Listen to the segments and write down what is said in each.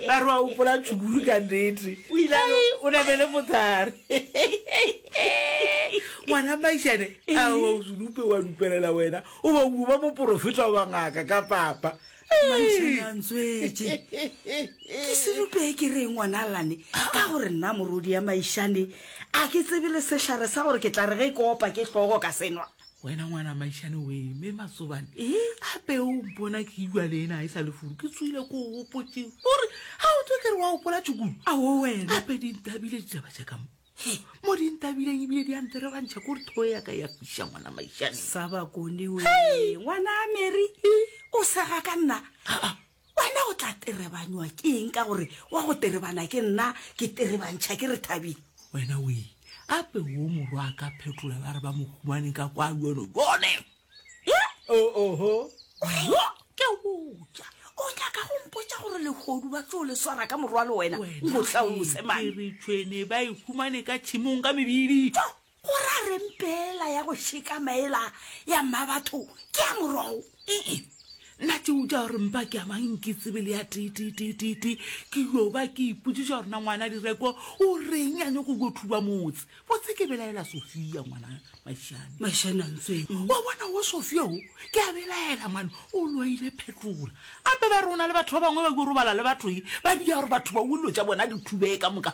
ba re wa opola tšhukuru ka nnete o ile o na le mothare ngwana maišane a wa o sedupe wa dupelela wena o ba o ba moporofeta wa ngaka ka papa maišanantswetse ke sedupe ke re ngwana lane ka gore nna morodi ya maišane a ke tsebe le sehlare sa gore ke tla re ge e kopa ke hlogo ka senwa wena ngwana maišane we me matsobane gape o mpona ke ilwa le ena e sa le furu ke tsoile ko gopotse gore ga o tse kere wa gopola tšukulu ao wena gape dintabile ditaba ja kamo mo dintabileng ebile di antere ba ntšha kore thoe ya ka ya fiša ngwana maišane sa bakone we ngwana mary o sega ka nna Wena o tla terebanywa ke eng ka gore wa go terebana ke nna, ke terebantšha ke re Thabile? Wena o e ape wo morwa a ka phetola ba re ba mo humane ka kwa bjono bjone? Oho, bjo ke botša. O nyaka go mpotša gore lehodu ba tlo le swara ka morwalo wena? Nko hlalouse mane. Ke re tšhwene ba e humane ka tšhimong ka mebili. Tšo, O ra reng pela ya go šeka maela ya mmabatho ke ya morogo? Ee, nna tšeo tša gore mpa ke amang ke tsebe le ya tititititi ke yo ba ke ipotsiša gore na ngwana direko o reng a nyako yo thuba motse botse ke belaela sofia ngwana mašane mašane a ntsweng mm. wa bona wo sofia o ke a belaela mane o loile phetola gape ba rona le batho ba bangwe ba yo robala le batho e ba dia gore batho ba wullo tša bona di thubee ka moka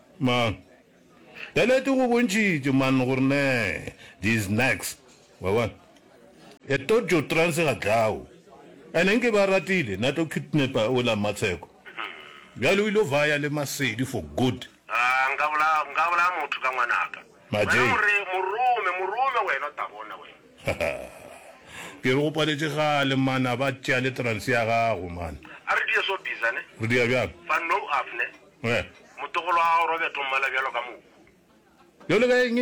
Ma, ka nete go bontšhitše man gore ne di is next, wa bona. E to jo trance ga dlao. Ene nke ba ratile na to kidnapper o la Matsheko. Bjale o ile vaya le Masedi for good. A, nka bolaya, nka bolaya motho ka ngwanaka. Ma Wena Jay. more, morome, morome wena o ta bona wena. Ha ha. Ke re go paletše kgale man a ba tšea le trance ya gago man. A re di ye so biza ne. Re di ya bjang? Fa nou af ne. Motogolo wa gago Robert o mmala bjalo ka mohu. Bjalo ka eng?